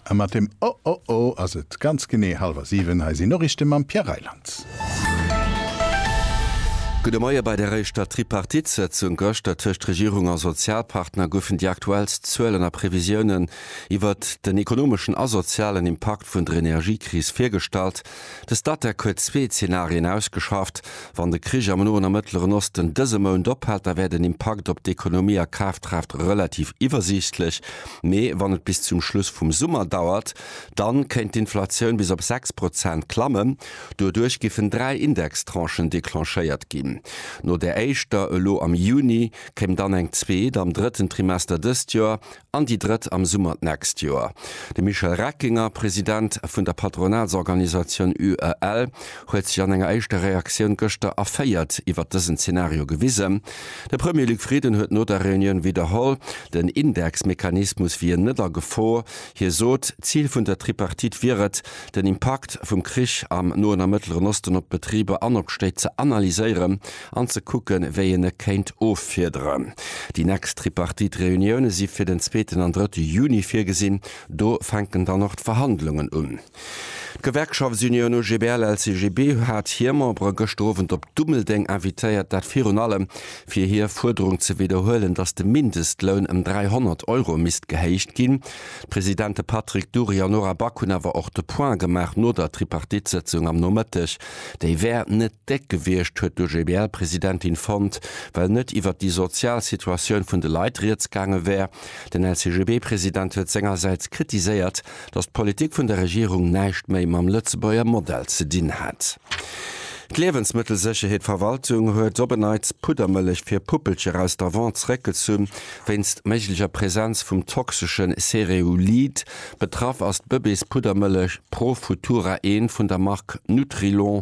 A mat dem Oh oh oh ass et ganz genee hallwer siwen. Hei sinn Noriichte mam Pierre Reyland. Gudde Moie, Bei der éischter Tripartite-Sëtzung gëschter tëscht Regierung a Sozialpartner goufen déi aktuellst Zuelen a Previsiounen iwwert den ekonomeschen a sozialen Impakt vun der Energiekris virgestallt. De Statec huet zwee Zenarien ausgeschafft. Wann de Krich am Noen a Mëttleren Osten dëse Mount ophält, da wär den Impakt op d'Ekonomie a Kaftraaft relativ iwwersiichtlech. Mee wann et bis zum Schluss vum Summer dauert, dann kéint d'Inflatioun bis op 6 Prozent klammen. Doduerch giffen dräi Indextranchen declenchéiert ginn. No där éischter elo am Juni kéim dann eng zweet am drëtten Trimester dëst Joer. an déi drëtt am Summer d'nächst Joer. De Michel Reckinger, President vun der Patronatsorganisatioun UEL, huet sech an enger éischter Reaktioun gëschter erféiert iwwert dësen Zenario gewisen. De Premier Luc Frieden huet no der Reunioun widderholl, den Indexmechanismus wier net a Gefor. Hie sot, d'Zil vun der Tripartite wier et, den Impakt vum Krich am Noen a Mëttleren Osten op d'Betriber an op d'Stéit ze analyséieren. an ze kucken, wéi een e kéint offiederen. Déi nächst Tripartite-Reunioune si fir den zweeten an drëtte Juni virgesinn. Do fänken dann och d'Verhandlungen un. D'Gewerkschaftsunioun OGBL-LCGB hat hir Membere gëschter Owend op Dummeldeng invitéiert, dat virun allem, fir hir Fuerderung ze widderhuelen, datt de Mindestloun ëm 300 Euro misst gehéicht ginn. D'Presidente Patrick Dury an Nora Back hunn awer och de Point gemaach no der Tripartite-Sëtzung am Nomëtteg, déi wär net. Déck gewiescht, huet d'OGBL-Presidentin fonnt, well net iwwert déi sozial Situatioun vun de Leit rieds gaange wär. Den LCGB-President huet sengersäits kritiséiert, datt d'Politik vun der Regierung näischt méi mam Lëtzebuerger Modell ze dinn hätt. D'Liewensmëttelsécherheet Verwaltung huet op en Neits Puddermëllech fir Puppelcher aus der Vente zeréckgezu wéinst méiglecher Präsenz vum toxeschen Cereulid. Betraff ass d'Bëbees-Puddermëllech Pro Futura, eent vun der Mark Nutrilon.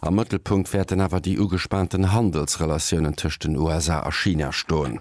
Am Mëttelpunkt wäerten awer déi ugespaanten Handelsrelatiounen tëscht den USA a China stoen.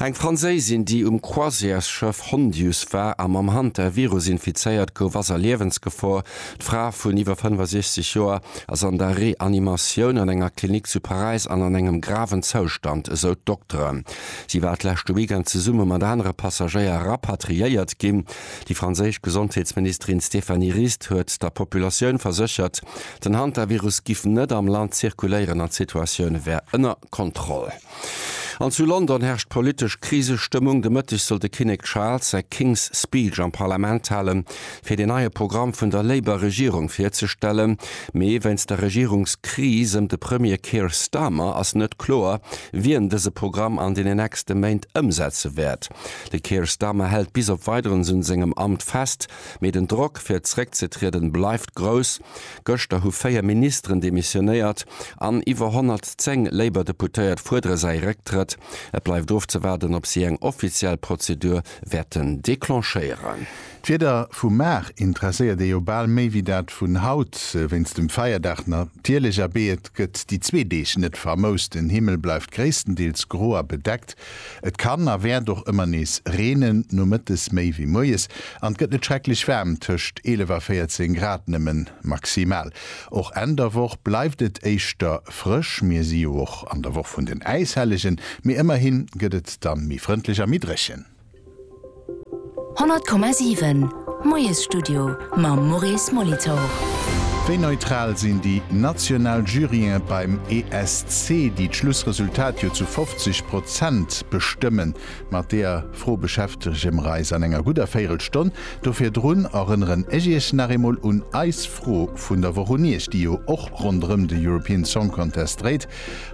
Eng Franséisin, déi um Croisièresschëff Hondius war a mam Hantavirus infizéiert gouf, ass a Liewensgefor. D'Fra vun iwwer 65 Joer ass an der Reanimatioun an enger Klinik zu Paräis an an engem graven Zoustand, esou d'Dokteren. Si war d'leschte Weekend zesumme mat anere Passagéier rapatriéiert ginn. Déi franséisch Gesondheetsministerin Stéphanie Rist huet der Populatioun verséchert, Den Hantavirus giff net am Land zirkuléieren an d'Situatioun wär ënner Kontroll. An zu London herrscht politesch Krisestëmmung. De Mëtteg soll de Kinnek Charles säi King's Speech am Parlament halen, fir deen neie Programm vun der Labour Regierung virzestellen. Mee wéinst der Regierungskris ëm de Premier Keir Starmer ass net kloer, wien dëse Programm an deenen nächste Méint ëmsetze wäert. De Keir Starmer hält bis op Weideres un sengem Amt fest. Mee den Drock fir zréckzetrieden bleift grouss. Gëschter hu 4 Ministeren demissionéiert an iwwer 110 Labour Deputéiert fuerdere säi Récktrëtt. Et bleift ofzewaarden op si eng offiziell Prozedur wäerten declenchéieren. D'Wieder vu mar interesséiert ee jo bal méi wéi dat vun haut. Wéinst dem Feierdag natierlech, abee et gëtt déi zwee Deeg net vermoust. Den Himmel bleift gréisstendeels gro a bedeckt, Et kann a wäert och ëmmer nees reenen, nomëttes méi wéi moies, an et gëtt net schrecklech waarm, tëscht 11 a 14 Grad nëmmen maximal. Och Enn der Woch bleift et éischter frësch, mir si jo och an der Woch vun den Äishellegen, mee ëmmerhi gëtt et dann méi frëndlech a méi dréchen. 100,7 Moiesstudio mam Maurice Molitor. Wéi neutral sinn déi national Juryen beim ESC, déi d'Schlussresultat jo zu 50 Prozent bestëmmen? Mat deeër Fro beschäftege mer eis an enger gudder Véirelstonn. Do virdrun erënneren ech Iech nach eemol un eis Fro vun der Woch un Iech, déi jo och ronderëm de European Song Contest dréit.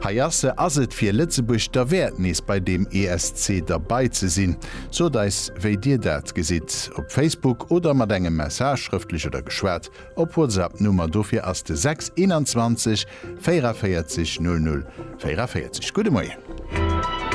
Hei ass se, ass et fir Lëtzebuerg derwäert nees bei deem ESC derbei ze sinn? Sot eis wéi dir dat gesitt op Facebook oder mat engem Message, schrëftlech oder geschwat, op WhatsApp, Nummer dofir ass de 6 21 44 00 44. Gudde Moien.